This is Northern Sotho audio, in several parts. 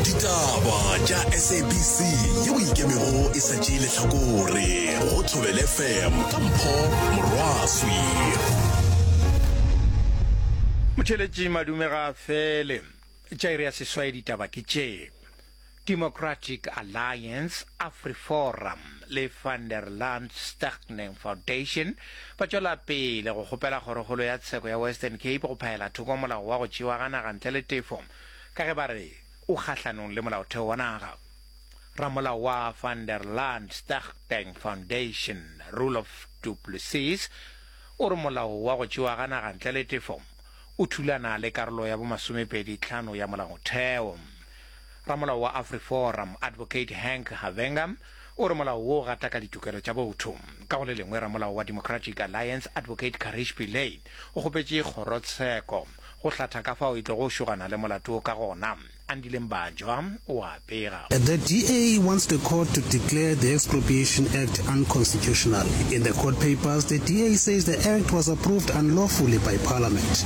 ditaba tša sabc yeo e ikemego e sa tšee lehlakore go thobele fm ka mpho morwaswi motheletši madume ga fele tša iri ya seswai ditaba ke tšee Democratic Alliance, AfriForum le Van der Land Stichting Foundation ba tšwela pele go kgopela Kgorokgolo ya Tsheko ya Western Cape go phaela thoko molao wa go tšewa ga naga ntle le tefo ka ge ba re o kgahlanong le molaotheo wa naga. Ramolao wa Van der Land Stichting Foundation, Roelof du Plessis, o re molao wa go tšewa ga naga ntle le tefo o thulana le karolo ya bomasomepedi tlhano ya molaotheo. Ramolao wa AfriForum, Advocate Hank Havenga, o re molao wo o gataka ditokelo tša botho. Ka go le lengwe, ramolao wa Democratic Alliance, Advocate Karish Pillay, o kgopetše kgorotsheko go hlatha ka fao e tlogo šogana le molato wo ka gona. Andile Mbanjwa o a pega. The DA wants the court to declare the Expropriation Act unconstitutional. In the court papers, the DA says the act was approved unlawfully by parliament.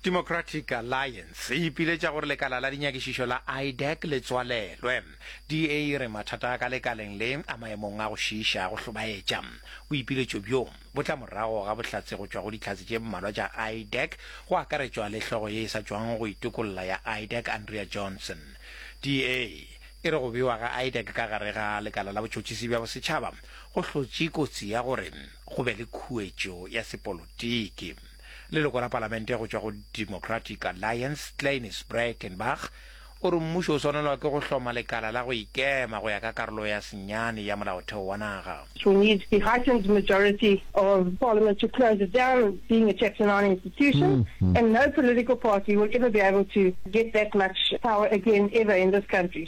Democratic Alliance e ipiletša gore lekala la dinyakišišo la IDEC le tswalelwe. DA e re mathata a ka lekaleng le a maemong a go šiiša a go hlobaetša. Boipiletšo bjo bo tla morago ga bohlatse go tšwa go dihlatse tše mmalwa tša IDEC, go akaretšwa le hlogo ye e sa tšwago go itokolla ya IDEC Andrea Johnson. DA e re go bewa ga IDEC ka gare ga lekala la botšhotšhisi bja bosetšhaba go hlotše kotsi ya gore go be le khuetšo ya sepolotiki. Leloko la palamente go tšwa go Democratic Alliance, Cleiniss Breytenbach, o re mmušo o swanelwa ke go hloma lekala la go ikema go ya ka karolo ya senyane ya molaotheo wa naga. We need the heightened majority of parliament to close it down being a chapter 9 institution and no political party will ever be able to get that much power again ever in this country.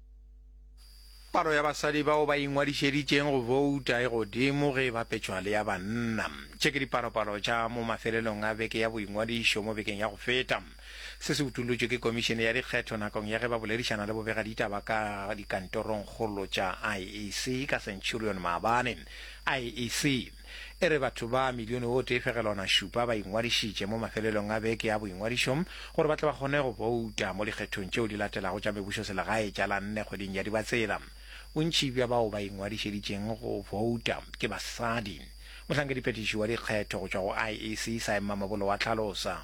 Palo ya basadi bao ba ingwadišeditšeng go bouta e godimo ge e bapetšwa le ya banna. Tše ke dipalopalo tša mo mafelelong a beke ya boingwadišo mo bekeng ya go feta. Se se utollotšwe ke Komišene ya Dikgetho nakong ya ge ba boledišana le bobegaditaba ka dikantorongkgolo tša IEC ka Centurion maabane. IEC. E re batho ba milione o tee fegelwana šupa ba ingwadišitše mo mafelelong a beke ya boingwadišo gore ba tle ba kgone go bouta mo dikgethong tšeo di latelago tša mebušoselegae tša la nne kgweding ya Dibatsela. Bontši bja bao ba ingwadišeditšeng go bouta ke basadi. Mohlankediphetiši wa dikgetho go tšwa go IEC, Saemma Mabolo wa hlalosa.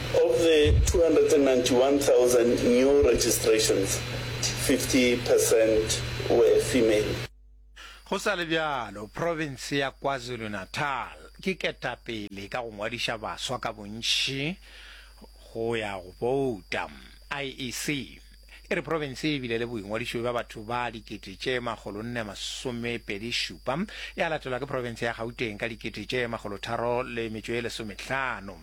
Of the 291,000 new registrations, 50 per cent were female. Go sa le bjalo, profense ya KwaZulu-Natal ke ketapele ka go ngwadiša baswa ka bontši go ya go bouta, IEC. E re profense ye e bile le boingwadišo bja batho ba dikete tše makgolo nne masomepedi šupa, ya latelwa ke profense ya Gauteng ka dikete tše makgolo tharo le metšo ye lesometlhano.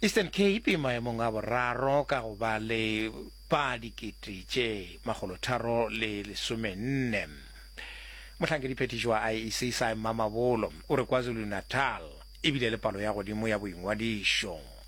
Eastern Cape e maemong a boraro ka go ba le ba dikete tše makgolo tharo le lesomenne. Mohlankedi-phethiši wa IEC Sy Mamabolo o re KwaZulu-Natal e bile le palo ya godimo ya boingwadišo.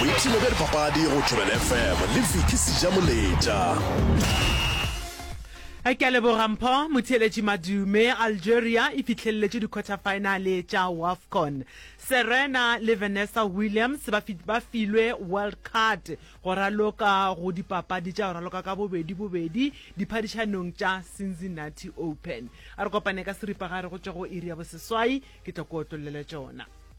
Boipshino bja dipapadi go Thobela FM le Vicky Sejamoletša. Ke a leboga Mpho Motheeletši Madume. Algeria e fihlelletše dikhwathafaenale tša Wafcon. Serena le Vanessa Williams ba fi- ba filwe wild card go raloka go dipapadi tša go raloka ka bobedi bobedi diphadišanong tša Cincinnati Open. A re kopane ka seripagare go tšwa go iri ya boseswai ke tlo ko otlollele tšona.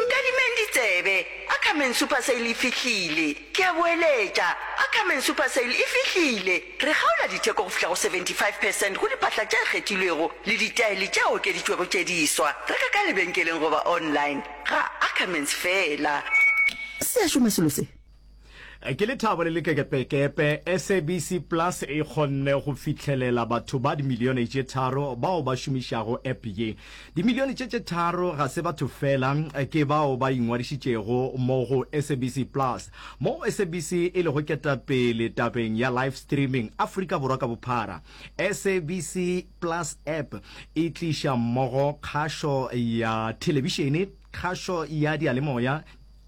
Nkadimeng ditsebe, Ackerman Super Sale e fihlile! Ke a boeletša, Ackerman Super Sale e fihlile! Re kgaola ditheko go fihla go 75 percent go diphahla tše kgethilwego le ditaele tše okeditšwego tše diswa. Reka ka lebenkeleng goba online, ga Ackermans feela. Se a šoma selo se? Ke lethabo le lekekepekepe SABC Plus e kgonne go fihlelela batho ba dimilione tše tharo bao ba šomišago app ye. Dimilione tše tše tharo ga se batho fela, ke bao ba ingwadišitšego mo go SABC Plus, moo SABC e lego ketapele tabeng ya live streaming Afrika Borwa ka bophara. SABC Plus app e tliša mmogo kgašo ya thelebišene, kgašo ya diyalemoya,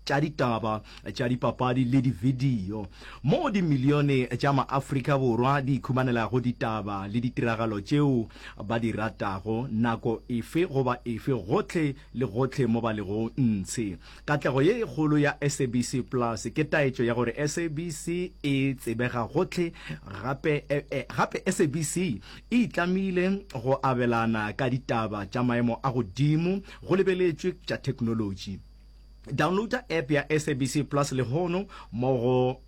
tša ditaba, tša dipapadi le dividio, moo dimilione tša maAfrika Borwa di ikhumanelago ditaba le ditiragalo tšeo ba di ratago nako efe goba efe gohle le gohle mo ba lego ntshe. Katlego ye e kgolo ya SABC Plus ke taetšo ya gore SABC e tsebega gohle gape, gape SABC e itlamile go abelana ka ditaba tša maemo a godimo go lebeletšwe tša theknolotši. Downloada app ya SABC Plus lehono mo go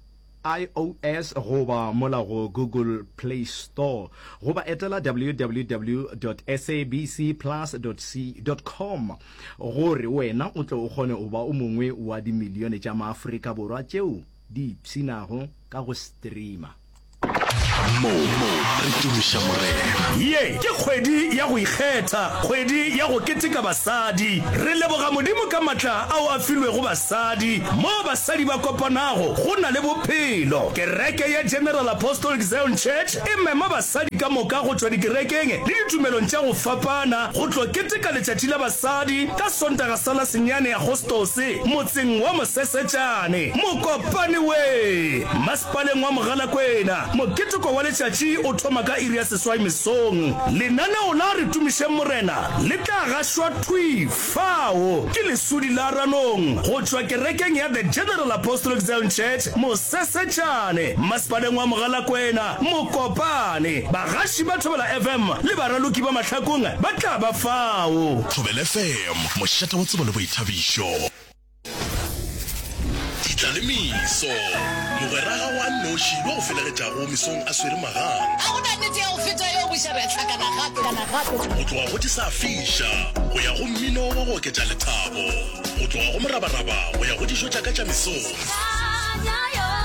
iOS goba mola go Google Play Store goba etela www.sabcplus.com gore wena o tle o kgone go ba o mongwe wa dimilione tša maAfrika Borwa tšeo di ipshinago ka go streama. mo re tumiša morena Ye ke kgwedi ya go ikgetha, kgwedi ya go keteka basadi. Re leboga Modimo ka matla ao a filwego basadi. Moo basadi ba kopanago, go na le bophelo. Kereke ya General Apostolic Zion Church e mema basadi ka moka go tšwa dikerekeng le ditumelong tša go fapana go tlo keteka Letšatši la Basadi ka Sontaga sa la senyane Agostose motseng wa Mosesetšane. Mokopane we! Paleng wa Mogalakwena. Moketeko wa letšatši o thoma ka iri ya seswai mesong. Lenaneo la Re Tumišeng Morena le tla gašwa thwi fao ke lesudi la Ranong go tšwa kerekeng ya The General Apostolic Zion Church, Mosesetšane, Mmasepaleng wa Mogalakwena, Mokopane. Bagaši ba Thobela FM le baraloki ba mahlakong ba tla ba fao. Thobela FM, mošate wa tsebo le boithabišo. Ditlalemiso. Mogwera ga o a nnoši yo o felegetšago mesong a swere magang. Ga go na nete ya go feta yeo boša re a hlakana gape. Go tloga go tisa fiša go ya go mmino wa go oketša lethabo, go tloga go morabaraba go ya go dijo tša ka tša mesong.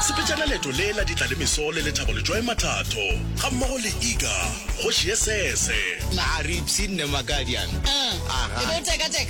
Sepetšana leeto le la Ditlalemiso le Lethabo Letšwae Mathatho gammogo le Iga, kgoši ye sese. Maaripsi nne Makadian. Aha.